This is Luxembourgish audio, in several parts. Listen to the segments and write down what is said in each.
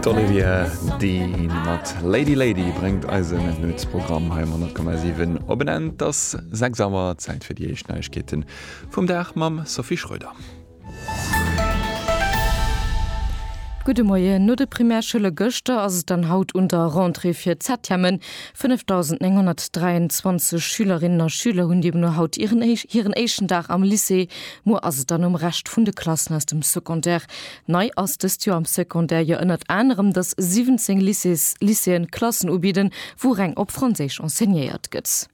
D'Olivia Dean mat Lady Lady bréngt eisen Nuetsprogramm hei am 10,7 op en Enn. Et ass 6 Auer, Zäit fir déi éischt Neiegkeete vum Dag mam Sophie Schröder. Gudde Moien. No de Primärschoule gëschter ass et dann haut un der Rentrée fir d'Septièmen. 5.923 Schülerinnen a Schüler hunn deemno haut hiren éischten Dag am Lycée. Muer ass et dann um Rescht vun de Klassen aus dem Secondaire Nei ass dëst Joer am Secondaire jo ënnert anerem, dass 17 Lycées, Lycéeën, Klassen ubidden, wou reng op Franséisch enseignéiert gëtt.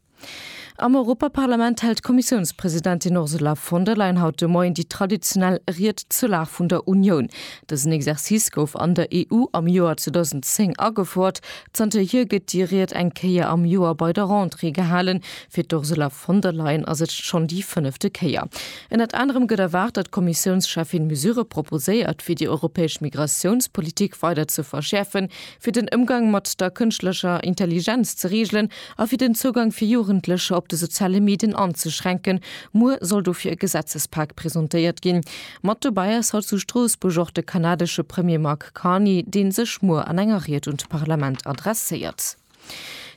Am Europaparlament hält d'Kommissiounspresidentin Ursula von der Leyen haut de Moien déi traditionell Ried zur Lag vun der Unioun. Dësen Exercice gouf an der EU am Joer 2010 agefouert. Zanter hier gëtt déi Ried eng Kéier am Joer bei der Rentrée gehalen. Fir d'Ursula von der Leyen ass et schonn déi fënnefte Kéier. Ënnert anerem gëtt erwaart, datt d'Kommissiounscheffin Mesurë proposéiert, fir déi europäesch Migratiounspolitik weider ze verschäerfen, fir den Ëmgang mat der kënschtlecher Intelligenz ze reegelen a fir den Zougang fir Jugendlecher op de soziale Medien anzeschränken. Muer soll dofir e Gesetzespak presentéiert ginn. Mat dobäi ass haut zu Stroossbuerg och de kanadesche Premier Mark Carney, dee sech muer an enger Ried un d'Parlament adresséiert.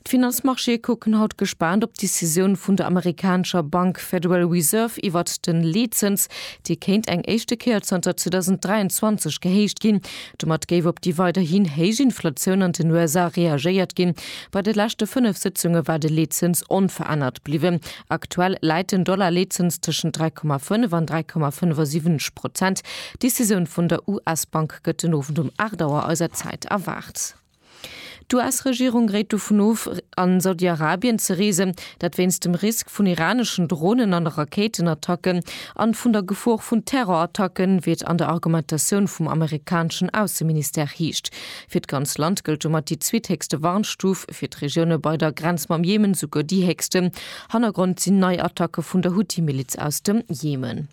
D'Finanzmarchéë kucken haut gespaant op d'Decisioun vun der amerikanescher Bank Federal Reserve iwwert den Leetzëns, dee kéint eng éischte Kéier zanter 2023 gehéicht ginn. Domat géif op déi weiderhin héich Inflatioun an den USA reagéiert ginn. Bei de leschte fënnef Sëtzunge war de Leetzëns onverännert bliwwen. Aktuell läit den Dollar-Leetzëns tëschent 3,5 an 3,75 Prozent. D'Decisioun vun der US-Bank gëtt den Owend um 8 Auer eiser Zäit erwaart. D'US-Regierung réit dovun of, an Saudi-Arabien ze reesen, dat wéinst dem Risk vun iraneschen Dronen an Rakéitenattacken an vun der Gefor vun Terrorattacken, wéi et an der Argumentatioun vum amerikaneschen Ausseministère heescht. Fir d'ganz Land gëllt domat déi zweethéchste Warnstuf, fir d'Regioune bei der Grenz mam Jemen souguer déi héchste. Hannergrond sinn nei Attacke vun der Huthi-Miliz aus dem Jemen.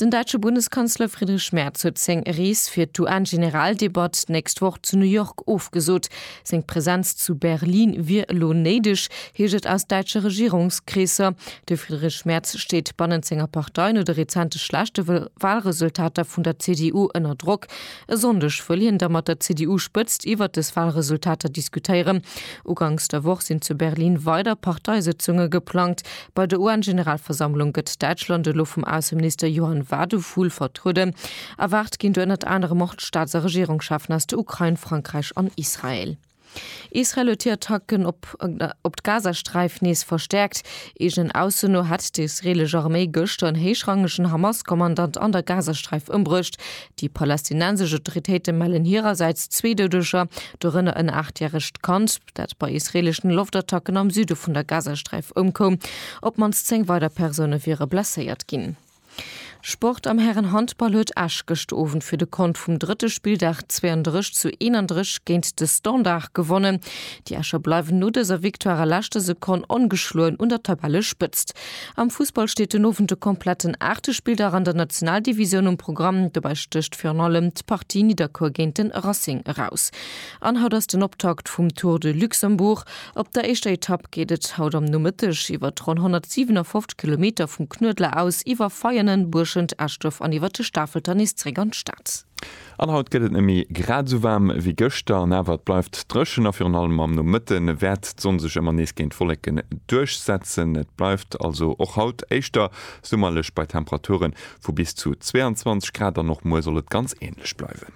Den däitsche Bundeskanzler Friedrich Merz huet seng Rees fir d'UN-Generaldebatt d'nächst Woch zu New York ofgesot. Seng Presenz zu Berlin wier elo néideg, heescht et aus däitsche Regierungskreesser. De Friedrich Merz steet bannent senger Partei no de rezente schlechte Walresultater vun der CDU ënner Drock. E Sonndeg wëll hien da mat der CDU-Spëtzt iwwert des Walresultater diskutéieren. Uganks der Woch sinn zu Berlin weider Parteisëtzunge geplangt, Bei der UN-Generalversammlung gëtt Däitschland elo vum Ausseminister Johann Wadephul vertrueden. Erwaart ginn do ënnert anerem och d'Staats a Regierungscheffen aus der Ukrain, Frankräich an Israel. Israel huet hir Attacken op op d'Gazasträif nees verstäerkt. Eegenen Ausso no hätt d'israeelesch Arméi gëschter en héichrangegen Hamas-Kommandant an der Gazasträif ëmbruecht. Déi palästinensesch Autoritéite mellen hirersäits zwee Doudeger, dorënner en aachtjäregt Kand. dat bei israeleschen Loftattacken am Süde vun der Gazasträif ëmkoum. Op d'mannst 10 weider Persoune wiere blesséiert ginn. Sport, Am Hären-Handball huet Esch gëscht Owend fir de Kont vum drëtte Spilldag 32 zu 31 géint de Standard gewonnen. Déi Escher bleiwen no dëser Victoire a leschter Sekonn ongeschloen un der Tabellespëtzt. Am Fussball steet den Owend de kompletten aachte Spilldach an der Nationaldivisioun um Programm. Dobäi stécht virun allem d'Partie Nidderkuer géint de Racing eraus. An haut ass den Optakt vum Tour de Luxembourg. Op der éischter Etapp geet et haut am Nomëtteg iwwert ronn 157 Kilometer vum Knuedler aus, iwwer Veianen, Buerschent, Eschduerf an iwwert de Stafelter nees zeréck an d'Stad. An haut gëtt et net méi grad esou waarm wéi gëschter. An awer et bleift dréchen a virun allem am Nomëtte wäert d'Sonn sech ëmmer nees géint Wolleken duerchsetzen. Et bleift also och haut éischter summerlech bei Temperature vu bis zu 22 Grad an och muer soll et ganz änlech bleiwen.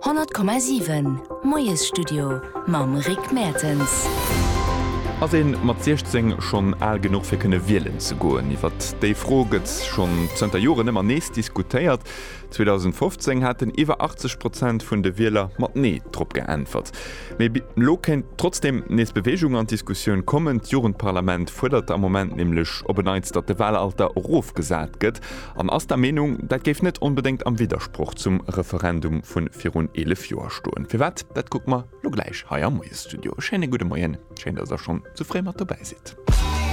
100,7 Moiesstudio mam Rick Mertens. Ass ee mat 16 schonn al genuch fir kënne wielen ze goen? Iwwert déi Fro gëtt schonn zënter Joren ëmmer nees diskutéiert. 2015 haten iwwer 80 Prozent vun de Wieler mat Nee drop geäntwert. Mee elo kéint trotzdeem nees Beweegung an d'Diskussioun kommen. D'Jugendparlament fuerdert am Moment nämlech op en Neits, datt de Wahlalter erofgesat gëtt. An ass der Meenung, dat géif net onbedéngt am Widdersproch zum Referendum vu virun 11 Joer stoen. Firwat, dat kucke mer lo gläich hei am Moiesstudio. E schéine gudde Moien, schéin, datt der schonn esou fréi mat dobäi sidd.